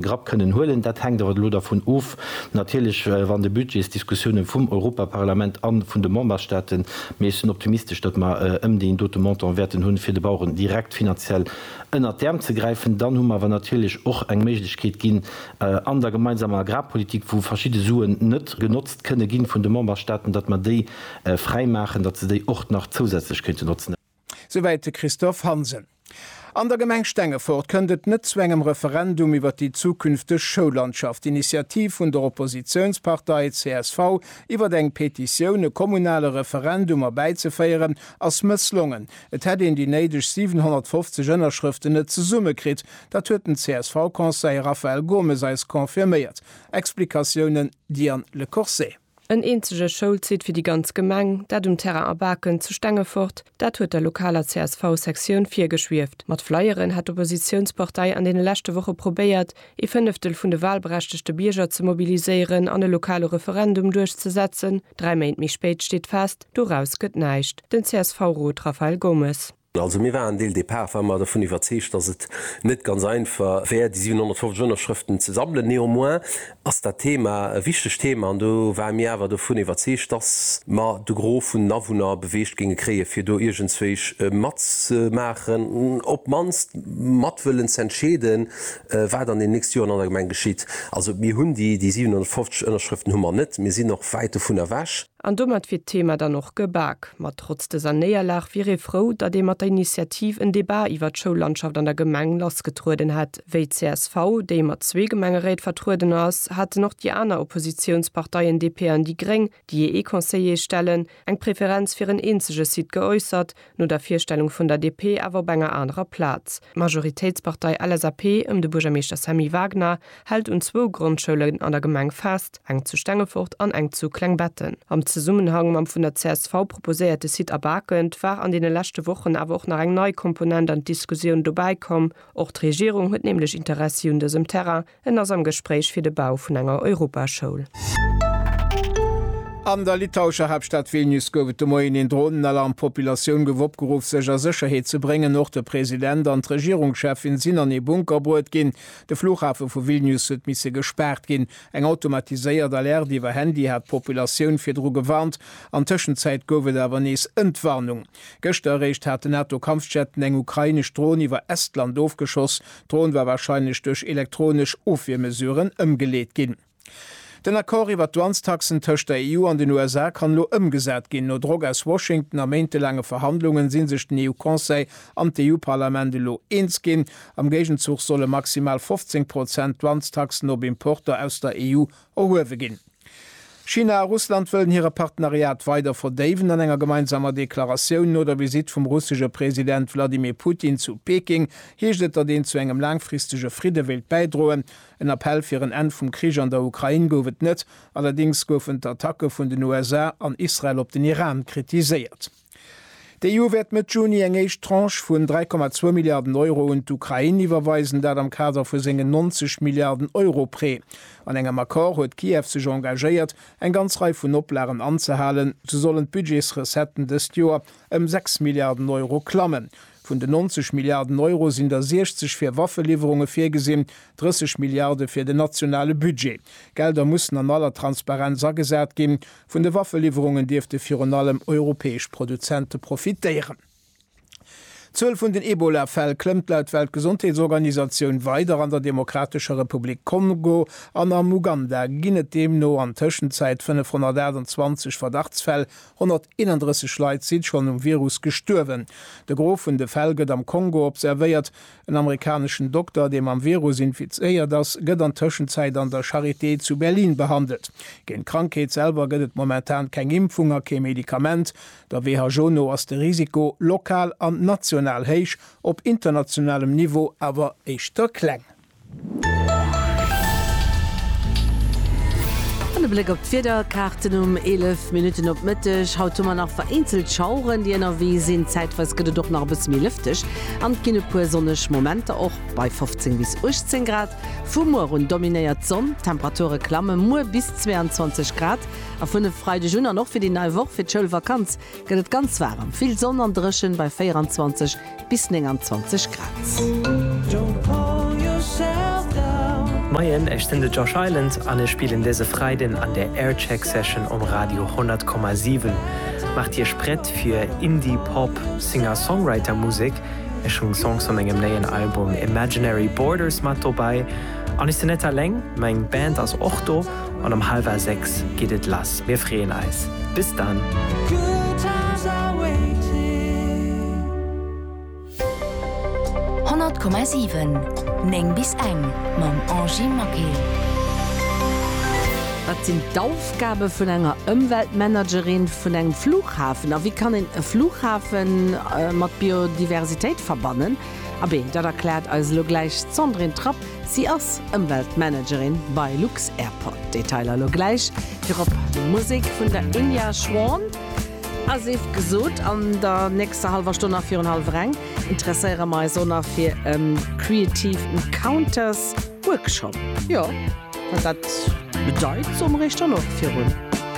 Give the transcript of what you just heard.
Grapp kënnen huelen. Dat hänkt awer elo dervun of, natierlech, wann de Budgetsdiskussioune vum Europaparlament a vun de Memberstaaten, mee ech sinn optimistesch, datt mer ëm deen dote Montant wäerten hunn, fir de Baueren direkt finanziell ënnert d'Äerm ze gräifen. Dann hu mer awer natierlech och eng Méiglechkeet ginn an der gemeinsamer Agrarpolitik, wou verschidde Suen net genotzt kënne gi vun de Memberstaaten, datt mer déi fräimaachen, datt se déi och nach zousätzlech kéinte notzen. Souwäit de Christophe Hansen. An der Gemeng Stengefort kënnt et net zu engem Referendum iwwer déi zukünfteg Schoullandschaft. D'Initiativ vun der Oppositiounspartei csv, iwwer eng Petitioun e kommunale Referendum erbäizeféieren, ass mësslongen. Et hätt een déi néideg 750 Ënnerschrëften net zesummekritt. Dat huet den CSV-Conseiller Raphael Gomes eis confirméiert. Explikatiounen, Diane Lecourcet. En eenzege Schoulsite fir déi ganz Gemeng, dat um Terrain A Baken zu Stengefort, dat huet der lokaler CSV-Sektioun virgeschwieft. Mat Flyeren hat d'Oppositiounspartei an deene leschte Woche probéiert, ee Fënneftel vun de wahlberechtegte Bierger ze mobiliséieren an e lokale Referendum duerchzesetzen. Dräi Méint méi spéit steet fest, Doraus gëtt näischt. Den CSV-Rot Rafael Gomes. Also mir waren dès le départ war mer dervun iwwerzeegt, dass et net ganz einfach wär, déi 750 Ënnerschrëften ze sammelen. Néanmoins ass dat Thema e wichtegt Thema an do ware mir awer dervun iwwerzeegt, dass mer de Gros vun den Awunner beweegt géinge kréien, fir do iergendswéi matzemaachen, op d'mannst mat wëllen z'entscheeden, wat an den nächste Joren an der Gemeng geschitt. Also mir hunn déi 750 Ënnerschrëften hu mer net, mir sinn och wäit dovun ewech. An domat wier d'Thema dann och gebak. Ma trotz dëser Néierlag wier ee frou, datt ee mat der Initiativ en Debat iwwer d'Schoullandschaft an der Gemeng lassgetrueden hätt. Wéi d'CSV, déi mat zwee Gemengeréit vertrueden ass, haten och déi aner Oppositiounsparteien DP an déi Gréng, déi ee Conseiller stellen, eng Preferenz fir en eenzege Site geäussert, no der Virstellung vun der DP awer op enger anerer Plaz. D'Majoritéitspartei LSAP ëm de Buergermeeschter Sammy Wagner hält un zwou Grondschoulen an der Gemeng fest, eng zu Stengefort an eng zu Klengbetten. Am Zesummenhang mam vun der csv proposéierte Site A Bakend war an deene leschte Wochen awer och nach eng nei Komponent an d'Diskusioun dobäi komm. Och d'Regierung huet nämlech Interessi un dësem Terrain. En ass am Gespréich fir de Bau vun enger Europaschoul. An der litauescher Haaptstad Vilnius gouf et de Moien een Dronenalarm. Populatioun gouf opgeruff sech a Sécherheet ze bréngen. Och de President an d'Regierungscheffin sinn an ee Bunker bruet ginn. De Flughafe vu Vilnius huet misse gespaart ginn. Eng automatiséiert Alerte iwwer Handy hat d'Populatioun virdru gewarnt. An Tëschenzäit gouf et awer nees Entwarnung. Gëschter eréischt hat den NATO-Kampfjetten eng ukrainesch Dron iwwer Estland ofgeschoss. D'Dron war warscheinlech duerch elektronesch Ofwiermesuren ëmgeleet ginn. Den Accord iwwer d'Douanestaxen tëscht der EU an den USA kann elo ëmgesat ginn. No Drock aus Washington a méintelaange Verhandlungen si sech den EU-Conseil an d'EU-Parlament elo eens ginn. Am Géigenzuch solle maximal 15 Prozent Douanestaxen op Importer aus der EU Erhuewe ginn. China a Russland wëllen hire Partenariat weider verdéiwen. An enger gemeinsamer Deklaratioun no der Visitt vum russesche President Wladimir Putin zu Peking heescht et, datt een zu engem laangfristege Fridde wéilt bäidroen. En Appell fir en Enn vum Krich an der Ukrain gouf et net. Allerdéngs goufen d'Attacke vun den USA an Israel op den Iran kritiséiert. D'EU wäert Mëtt Juni eng éischt Tranche vun 3,2 Milliarden Euro un d'Ukrain iwwerweisen, dat am Kader vu sengen 90 Milliarden Euro Prêt. An engem Accord huet Kiew sech engagéiert, eng ganz Rei vun Oplagen anzehalen. Sou sollen d'Budgetsrecetten dëst Joer ëm 6 Milliarden Euro klammen. Vun den 90 Milliarden Euro sinn der 60 fir Waffeliwwerunge virgesinn, 30 Milliarde fir den nationale Budget. D'Gelder mussen an aller Transparenz agesat ginn, Vun de Waffeliwwerungen dierfte virun allem europäesch Produzente profitéieren. D'Zuel vun den Ebola-Fäll klëmmt laut Weltgesondheetsorganisatioun weider. An der Demokratescher Republik Kongo an am Uganda ginn et deemno an Tëschenzäit 528 Verdachtsfäll. 131 Leit si schonn um Virus gestuerwen. De Gros vun de Fäll gëtt am Kongo observéiert. En amerikaneschen Dokter, dee mam Virus infizéiert ass, gëtt an Tëschenzäit an der Charité zu Berlin behandelt. Géint d'Krankheet selwer gëtt et momentan keng Impfung a kee Medikament. Der WHO no ass de Risiko, lokal an national héich, op internationalem Niveau awer éischter kleng. An e Bléck op d'Wiederkaarten um 11 Minutten op Mëtteg. Haut hu mer nach vereenzelt Schaueren, déi ënnerwee sinn. Zäitweis gëtt et och nach e bësse méi lëfteg an et ginn e puer sonneg Momenter, och bei 15 bis 18 Grad. Vu muer un dominéiert d'Sonn, d'Temperature klamme muer bis 22 Grad a vun e Freideg un an och fir déi nei Woch, fir d'Schoulvakanz, gëtt et ganz waarem. Vill Sonn an dréchen bei 24. bis 29 Grad. Moien, ech sinn de Josh Island an ech spillen dëse Freiden an der Aircheck Session um Radio 100,7. Maacht iech prett fir Indie Pop Singer-Songwriter Musek. Ech hunn Songs vu mengem néien Album Imaginary Borders mat dobäi an ech sinn net alleng, meng Band ass och do. an um halwer 6 geet et lass. Mir freeën eis. Bis dann! Honnert Komma siwen, néng bis eng, mam Angie Maquet. Wat sinn d'Aufgabe vun enger Ëmweltmanagerin vun engem Flughafen a wéi kann een e Flughafe mat Biodiversitéit verbannen? Abee, dat erkläert eis elo gläich d'Sandrine Trapp. Si ass Ëmweltmanagerin bei lux-Airport. Detailer lo gläich. Virop Musek vun der Inya Schwan a Sift gesot. An der nächster hallwer Stonn a virun hallwer eng interesséiere mer eis och nach fir e Creative Encounters Workshop. Jo, wat dat bedeit, soe mer iech dann och virun.